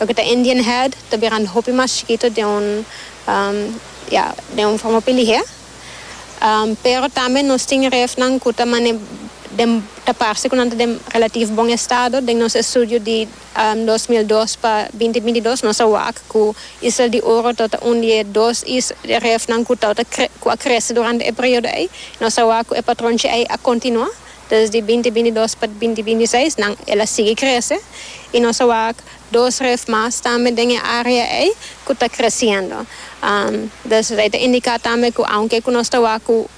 Loke ta Indian head ta biran hopi mas chikito den un ya den un forma hopi lihé pero tambe nos tin refnan ku ta mane den ta parse ku nan ta den relativo bon estado den nos estudio di dos mil dos pa binti binti dos nos a wak ku Isla di Oro ta ota un di e dos is refnan ku ta ota ku a krese durante e periodo ei nos a wak ku e patronchi ei a kontinua Desdi binti binti dos pa binti binti seis nan el a sigui krese y nos a wak dos ref mas tambe den e area ey cu ta creciendo. Des rey ta indica tambe cu aunke cu nos ta wak cu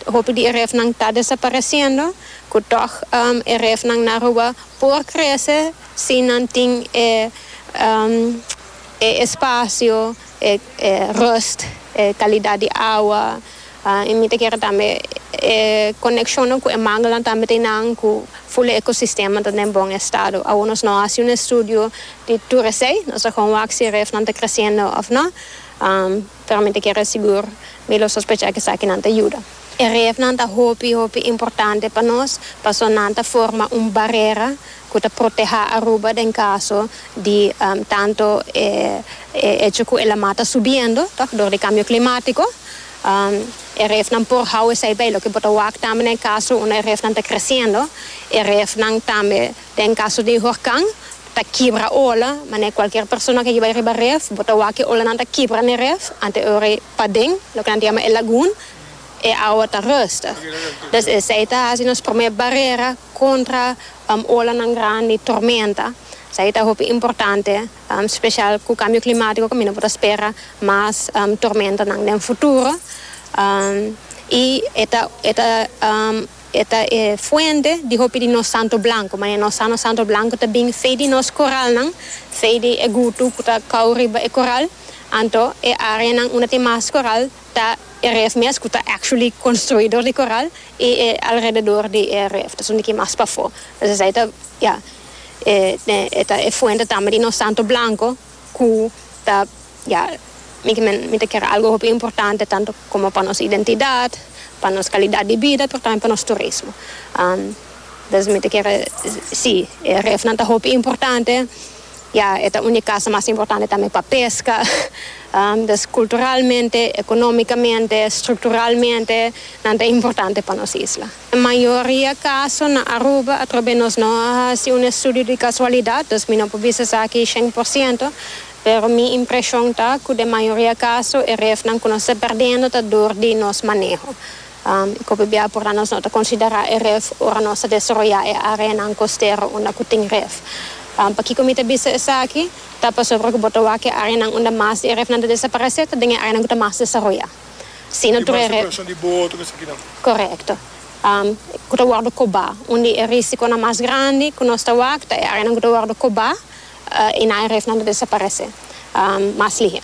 hopi di e ref nan ta desapareciendo cu toch e ref nan na Aruba por crece si nan tin e espacio. e rust, e kalidat di awa, i mi ta kere tambe e konekshonnan ku e manguelan tambe tin nan ku ful e ekosistema ta den bon estado. Awo nos no a hasi un estudio di tur esei, nos a kon wak si e ref nan ta kresiendo òf no, pero mi ta kere sigur, mi lo sospecha ku esakinan ta yuda. E refnan ta hopi hopi importante pa nos paso nan ta forma un barera cu ta protehá Aruba den caso di tanto e hecho cu e la mar ta subiendo tòg dor di cambio climático. E refnan por hou esei bay. Loke bo ta wak tambe na e caso unda e refnan ta creciendo. E refnan tambe den caso di horcan. Ta kibra ola, manera cualkier persona ke yiba riba ref, bo ta wak e olanan ta kibra n'e ref, ante ora e paden, loke nan ta yama e lagoon, e awa ta rustig. Dus esei ta haci nos prome barera contra olanan grandi, tormenta. Esaki ta hopi importante, special cu cambio climatico caminda bo ta spera mas tormentanan den futuro y e ta e ta. E ta e fuente di hopi di nos santo blanco, ma e nos sano santo blanco ta bin fei di nos coralnan, fei di e gutu cu ta cau riba e coral, anto e areanan unda tin mas coral ta e reef mes cu ta actually construi dor di coral y e alrededor di e reef ta sundiki mas pafo, entonces esey ta ya e ta e fuente tambe di nos santo blanco. cu ta ya mi kimen mi ta ker algo hopi importante tanto como pa nos identidad pa nos calidad di bida pero tambe pa nos turismo entonces mi ta ker si e ref nan ta hopi importante ya e ta un di casa mas importante tambe pa pesca entonces culturalmente economicamente structuralmente nan ta importante pa nos isla. Na mayoria kaso na Aruba, atrobe nos no a hasi un estudio di kasualidat, dus mi no por bisa esaki shen por siento, pero mi impreshon ta ku den mayoria kaso e refnan ku nos ta perdendo ta dor di nos maneho. I ku p'e bia pornan nos no ta konsiderá e ref ora nos ta desaroyá e áreanan kostero unda ku tin ref? Pakiko mi ta bisa esaki? Ta pasobra ku bo ta wak e áreanan unda mas di e refnan ta desaparesé ta den e áreanan ku ta mas desaroyá. Si no tur e. Korekto. Ku ta wòrdu kobá. Un di e rísikonan mas grandi ku nos ta wak ta e áreanan ku ta wòrdu kobá i nan e rifnan ta desaparesé mas lihe.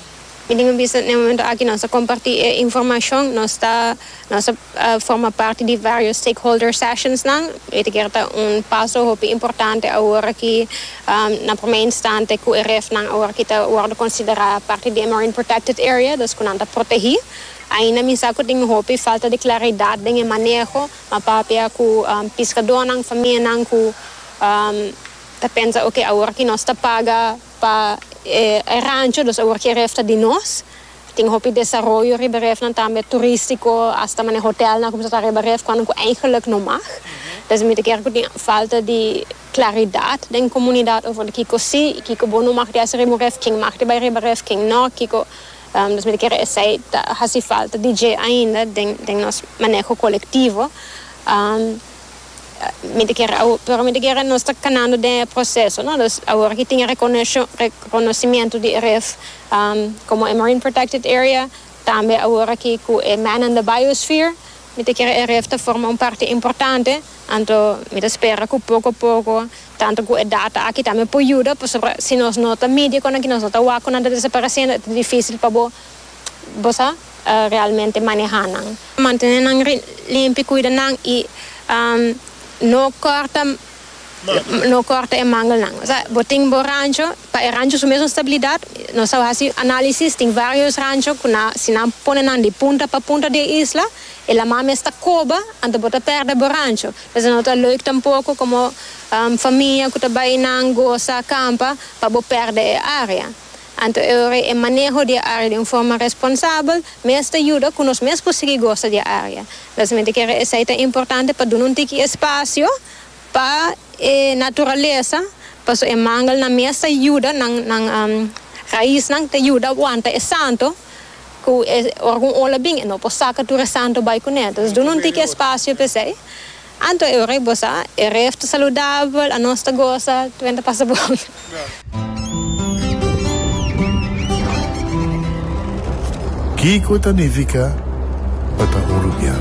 Mi tin ku bisa na e momentu aki nos ta kompartí e informashon, nos ta nos ta forma parti di vários stakeholder sessions nan, e ta kere ta un paso hopi importante awor ki. na promé instante ku e refnan awor ki ta wòrdu konsiderá parti di e Marine Protected Area, dus ku nan ta protegí. Ainda mi sa ku tin un hopi falta di klaridat den e maneho, ma papia ku piskadónan, famianan ku ta pensa oke awor ki nos ta paga pa e rancho, dus awor ki e ref ta di nos. Tin hopi desaroyo riba e refnan tambe, turístiko, asta manera hotelnan ku ta riba ref, kòrda ku eingeluk no mag. Desde mi ta kere ku tin falta di. Claridad den comunidad over di kico si y kico bo no mag di haci riba un ref, ken mag di bay riba ref, ken no, kico nos mester kere esey ta haci falta di dje ainda den nos maneho colectivo. Mi ta kere awor, pero mi ta kere nos ta canando den e proceso, no, dus awor aki tin e reconocimiento di e ref como e marine protected area, tambe awor aki cu e man in the biosphere, mi ta kere e ref ta forma un parti importante. Anto mi ta spera ku poko poko, tantu ku e data aki ta mi por yuda, pasobra si nos no ta midi kon aki nos no ta wak ku nan ta desaparesiendo e ta difisil pa bo bo sa realmente maneha nan. Mantene nan limpi, kuida nan i no korta no korta e mangelnan. Osea bo tin bo rancho, pa e rancho su mesun stabilidat, nos a hasi analisis, tin varios rancho ku nan si nan pone nan di punta pa punta di e isla, E lama mes ta koba, anto bo ta pèrdè bo rancho. P'esei no ta leuk tampoko komo famia ku ta bai nan gosa kampa pa bo pèrdè e área. Anto e ora e maneho di e área di un forma responsabel mes ta yuda ku nos mes por sigui gosa di e área. Mesamente kere esei ta importante pa duna un tiki espasio pa e naturalesa paso e mangelnan mes ta yuda nan raisnan ta yuda wanta e santo. cu e ora cu un ola bin e no por saca tur e santo bay cu ne, entonces duna un tiki espacio pa esey. Anto e ora y bo sa, e ref ta saludabel, anos ta goza, tur enta pasa bon. Kico ta nifica pa ta un rubian?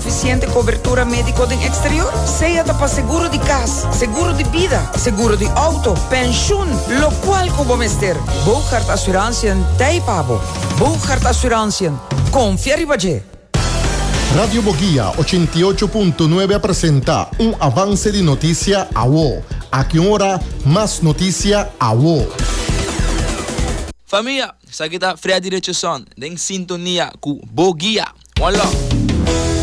Sufisiente kobertura médiko den eksterior, sea ta pa seguro di kas, seguro di bida, seguro di outo, penshun, lokual ku bo mester, Boogaard Assurantiën t'ei pa bo. Boogaard Assurantiën, konfia riba dje! Radio Bogia ochenta i ocho punto nuebe a presenta un avance di noticia awo. Aki un ora mas noticia awo. Famia, esaki ta Freddy Richardson den sintonia cu Bogia. One love.